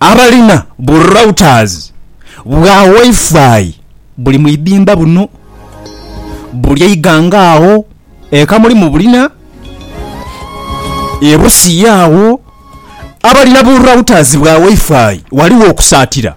Abalina bu routers bwa Wi-Fi buli mu idhimba buno buli eighanga agho e Kamuli mu bulina, e Busia agho. Abalina bu routers bwa Wi-Fi ghaligho okusaatira.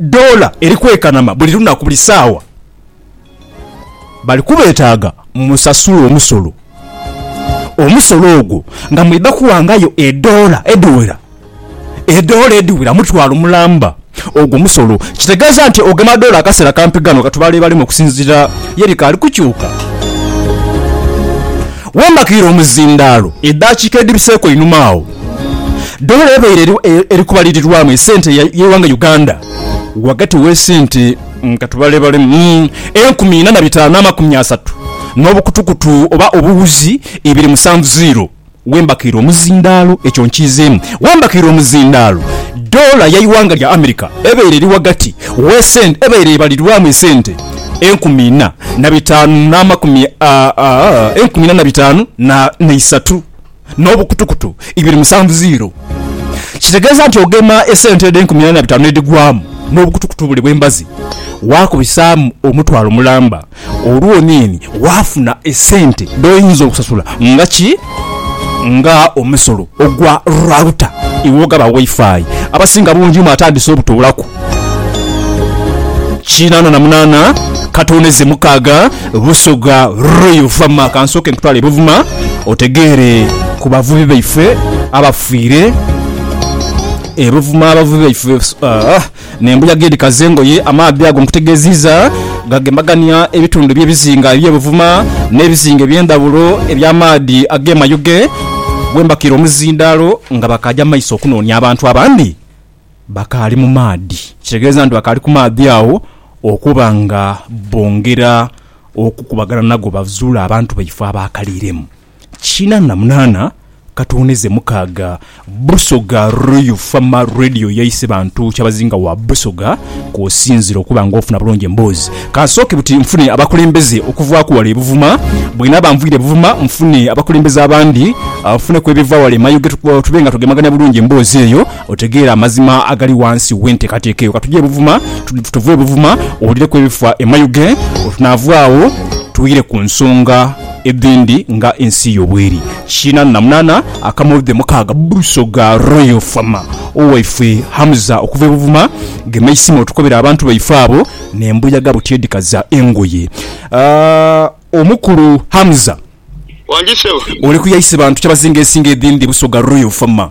Doola eri kwekanama buli lunaku, buli saawa. Bali kubeetaaga musasule omusolo. Omusolo ogwo nga mwidha kuwangayo edoola edhiwera, edoola edhiwera mutwalo mulamba. Ogwo musolo kitegeeza nti ogema doola akaseera kampi ghano ka tubaleebalemu okusinziira ye bikaali kukyuka. Wembakiire omuzindaalo edaakiika edhibiseeko einhuma agho, Doola ebaire eri kubalirirwamu esente y'eighanga Uganda ghagati w'esente katubalebaleemu enkumi ina na bitaanu n'amakumi asatu n'obukutukutu oba obuwuzi ibiri musanvu ziiro w'embakaire omuzindaalo. Ekyo nkiizeemu, w'embakaire omuzindaalo doola y'eighanga lya America ebaire eri ghagati w'esente ebaire ebalirirwamu esente enkumi ina na bitaanu n'amakumi, enkumi ina na bitaanu n'eisatu. n'obukutukutu ibiri musanvu ziiro. Kitegeeza nti ogema esente edho enkumi ena na bitaanu n'edhigwamu n'obukutukutu buli bw'embazi waakubisaamu omutwalo mulamba olwo oniini waafuna esente dh'oyinza okusasula nga ki? nga omusolo ogwa router iwe ogaba Wi-Fi. Abasinga bungi mu atandise obutoola ku. Kinaana na munaana katooneze mukaaga Busoga Roy Luvama. Kansooke nkutwale e Buvuma otegeere ku bavubi baife abafiire e Buvuma. Abavubi baife ah, n'embuyaga edhikaza engoye. Amaadhi ago nkutegeeziiza gagembagania ebitundu by'ebizinga eby'e Buvuma n'ebizinga eby'endhawulo eby'amaadhi ag'e Mayuge, wembakiire omuzindaalo nga bakaaja mu maiso okunoonia abantu abandi. bakaali mu maadhi. Kitegeeza nti bakaali ku maadhi agho okuba nga bongera okukubagana nago bazuule abantu baifo abaakaliiremu. Kiina na munaana Katondeze mukaaga Busoga Royal Fama Radio yaise bantu kyabazinga wa Busoga kw'osinziira okuba nga ofuna bulungi emboozi. Ka nsooke buti nfune abakulembeze okuvaaku wale e Buvuma. Bw'enaaba nviire e Buvuma nfune abakulembeze abandi, nfuneku ebiva wale e Mayuge tube nga tugemagania bulungi emboozi eyo. Otegeere amazima agali ghansi w'enteekateeka eyo. Ka tugye e Buvuma, tuve e Buvuma owulireku ebifa e Mayuge, olwo tunaava agho twire ku nsonga edhindi nga ensi yo bweri. Kiinanu na munaana akamodhi mukaaga Busoga Royal Fama. Owaife Hamza okuva e Buvuma, gema eisimo otukobere abantu baife abo n'embuyaga buti edhikaza engoye. Aah omukulu Hamza, oli ku yaise bantu kyabazinga ensingo edhindi Busoga Royal Fama?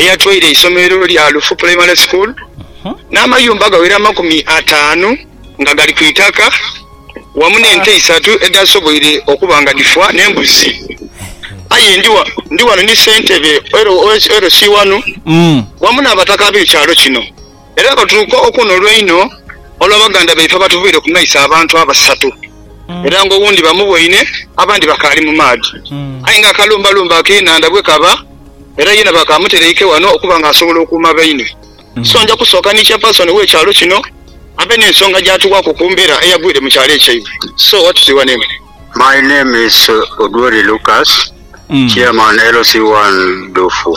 eyatwaire eisomero lya Lufu Primary School n'amayumba aghawera amakumi ataanu nga gali ku itaka wamu n'ente isatu edhaasoboire okuba nga dhifa n'embuzi. Aye ndi ghano ni Ssentebe LC wano wamu n'Abataka ab'ekyalo kino. era batuuka okwonolwa inho olwa baganda baife abatuvaire ku maiso abantu abasatu, era nga owundi bamuboine abandi bakaali mu maadhi. Aye nga akalumbalumba ak'enhandha bwekaba, era yena bakamutereike wano okuba nga asobola okuuma baine. So nja kusooka ni chairperson we kyalo kino abe n'ensonga gyatuwaku ku mbeera eyagwire mu kyalo ekyaibwe. So what is your name? My name is Odwori Lucas, chairman LC1 Dufu.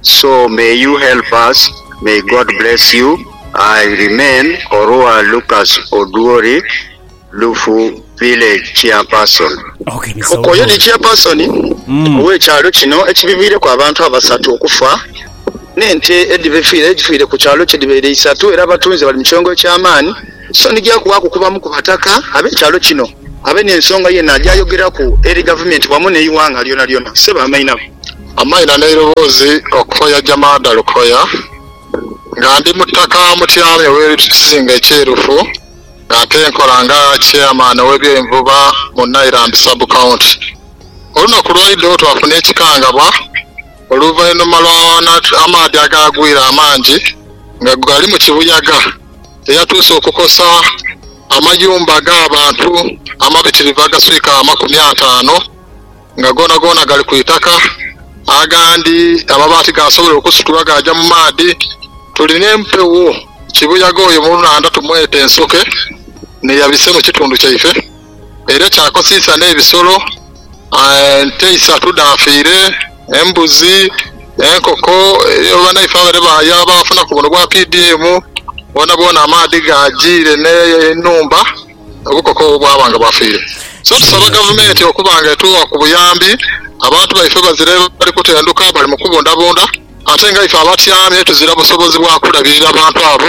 So may you help us may God bless you I remain Orua Lucas Odwori Lufu village chairperson. Ok oyo ni chairperson owe kyalo kino ekibiviireku abantu abasatu okufa ne nte edhibefiire edhifiire ku kyalo kye dhibeere isatu era abatunze bali mu kyongo ekyamaani so nigya kubaaku kubamu ku bataka abe kyalo kino. abe n'ensonga yeena gy'ayogeraku eri Gavumenti wamu n'eighanga lyonalyona. Ssebo Amaina. Amaina n'eiroboozi okuva ya Jamada Lukoya nga ndi mutaka Mutyaba ew'eri Kizinga ekyerufu nga ate nkola nga Chairman ow'ebyenvuba mu Nailand Sub County. Olunaku lwaidho twafuna ekikangabwa oluvainuma lwa amaadhi agaagwira amangi nga gali mu kibuyaga. eyatuuse okukosa amayumba g'abantu amabitirivu agaswika amakumi ataano nga goonagoona gali ku itaka, agandi amabaati gaasobola okusitulwa gaaja mu maadhi. Tuli n'empewo kibuyaga oyo mu nhandha tumwete Nsoke n'eyabise mu kitundu kyaife. era kyakosiisa n'ebisolo. Ente isatu dhaafiire, embuzi, enkoko. Eliyo banaife abale baaya baafunaku buno bwa PDM, boonaboona amaadhi gaajiire n'enhumba, obukoko obwo bwaba nga bwafiire. So tusaba Gavumenti okuba nga etuwa ku buyambi, abantu baife bazire bali kutenduka, bali mu kubundabunda ate nga ife abatyamye tuzira busobozi bwa kulabirira bantu abo.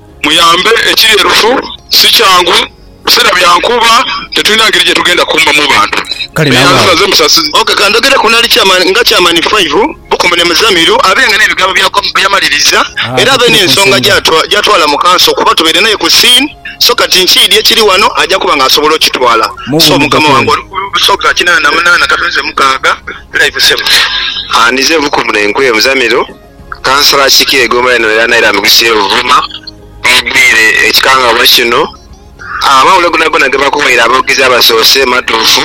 Muyambe ekiri erufu si kyangu biseera bya nkuba tetulina ngeri gye tugenda kukuumamu bantu Kale nawe awo. Eyanzilaze musasize. Ok ka ndhogere ku Nali Chairman nga Chairman Five, Bukomu ne Muzamiru abe nga n'ebigambo bya Kwaku bye yamaliriza Haa era abe tukiri ku n'ensonga nsonga. gy'atwa gy'atwala mu Kanso kuba tubaire n'aye ku scene so kati nkiidhi ekiri ghano aja kuba nga asobola okitwala Mu so bwoomu Mukama Dokolo. wange oli ku busoga kinaana na munaana katonze mukaaga Five Seven. Haa nize Bukomu n'Enkwe, Muzamiru. Kansala akiikira egoma eno era naira mu kisu ye Buvuma mwegwire ekikangabwa kino. Amawulire gonagona gebakuwaire aboogezi abasoose matuufu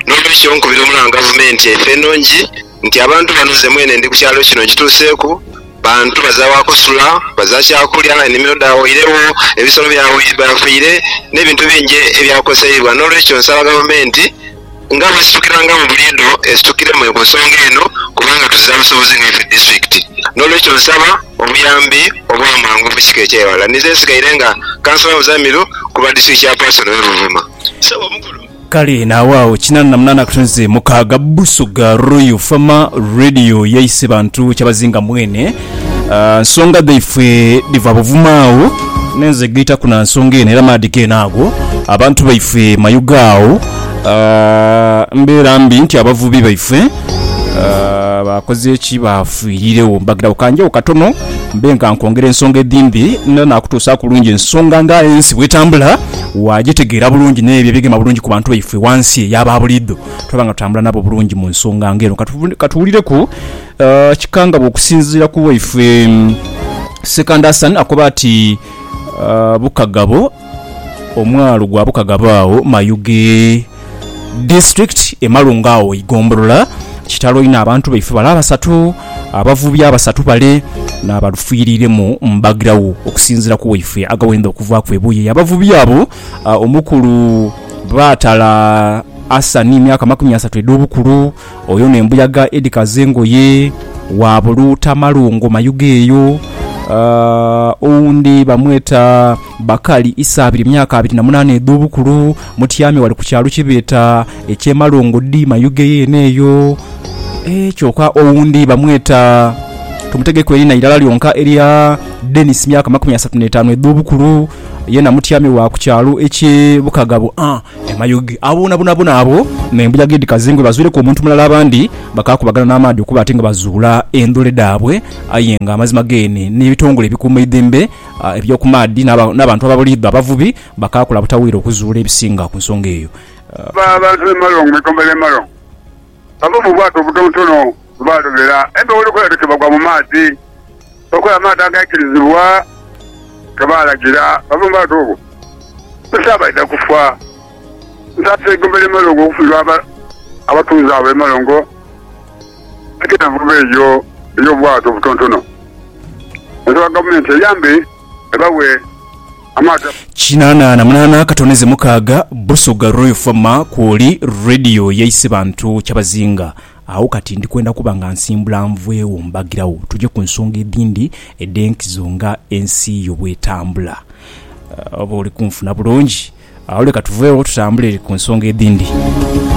n'olwekyo nkubira omulanga gavumenti efe enongi nti abantu bano nze mwene ndi ku kyalo kino nkituuseeku bantu baza wakusula, baza kyakulya, enimiro dhawoiregho, ebisolo byafiire n'ebintu bingi ebyakoseibwa n'olwekyo nsaba gavumenti. Nga bwesitukirangamu buliidho esitukiremu ku nsonga eno kubanga tuziza busobozi nga ife disitulikiti n'olwekyo nsaba obuyambi obwamangu obwekika eky'eghala. Ninze nsigaire nga Councillor Muzamiru ku lwa District Chairperson we Buvuma. Ssebo Omukulu. Kale naagho agho kinana na munana akatonzi mukaaga Busoga Royal Farmer Radio yaise bantu kyabazinga mwene. Nsonga dhaifwe dhiva buvuma agho nenze gaitaku na nsonga eno era maadhi geene ago abantu baife mayuge agho mbeera mbi nti abavubi baife baakoze ki baafiiriregho. Mbagirawo kanjegho katono mbe nga nkwongera ensonga edhindi era naakutuusaaku bulungi ensonga nga ensi bw'etambula waagitegeera bulungi n'ebyo ebigema bulungi ku bantu baife ghansi eyo aba buliidho twaba nga tutambula nabo bulungi mu nsonga nga eno. Ka tuwulireku Uh, kikangabwa okusinziira ku waifwe Sekandi Hassan akoba ati uh, Bukagabo omwalo gwa Bukagabo awo Mayuge district emalunga awo igombolola kitalo ino abantu baife bale abasatu abavubi abasatu bale nabalufwiriremu mbagirawo okusinziira ku waifwe agawenda okuvaaku ebuye yabavubi abo uh, omukulu baatala Hassan myaka makumi asatu edh'obukulu Oyo no embuyaga edhikaza engoye. Waabuluuta malungo mayuge eyo. Aah, owundi bamweta Bakali, Isaabiri, myaka abiri na munaana edh'obukulu, mutyame wale ku kyalo kye beeta eky'e Malongo dhi Mayuge yeene eyo. Eeh, kyoka owundi bamweta, tomutegeeku eriina irala lyonka erya Denis, myaka makumi asatu n'etaanu edh'obukulu, yeena mutyame wa ku kyalo eky'e Bukagabo. Aah, Amayugi abuunabunabuna abwo n'embuyaga edhikaze engo bibazwireku omuntu mulala abandi bakaakubagana n'amaadhi okuba ati nga bazuula endhule dhaabwe. Aye nga amazima geene n'ebitongole ebikuuma eidhembe eby'oku maadhi n'abantu ababuliidho abavubi bakaakola butaweera okuzuula ebisinga ku nsonga eyo. Abantu b'e Malongo mu ikomba ly'e Malongo Bava mu bwato obutontono bwe baalobera empewo lukula dhiti bagwa mu maadhi. Bakola amaadhi agaikirizibwa ge baalagira. Bava mu bwato obwo busaagho baidha kufa. Nsaase eigumba ly'e Malongo okufiirwa abatuuze abo e Malongo nti envuba eyo ey'obwato obutontono nsaba Gavumenti eyambe ebawe. Kinana na munana akatoneze mukaaga Busoga Royal Fama kwoli Radio yaise bantu kyabazinga agho kati ndi kwenda kuba nga nsimbula nvwegho mbagiragho tuje ku nsonga edhindi edhenkizo nga ensi yo bwetambula oba oli kunfuna bulungi agho leka tuvegho tutambule ku nsonga edhindi.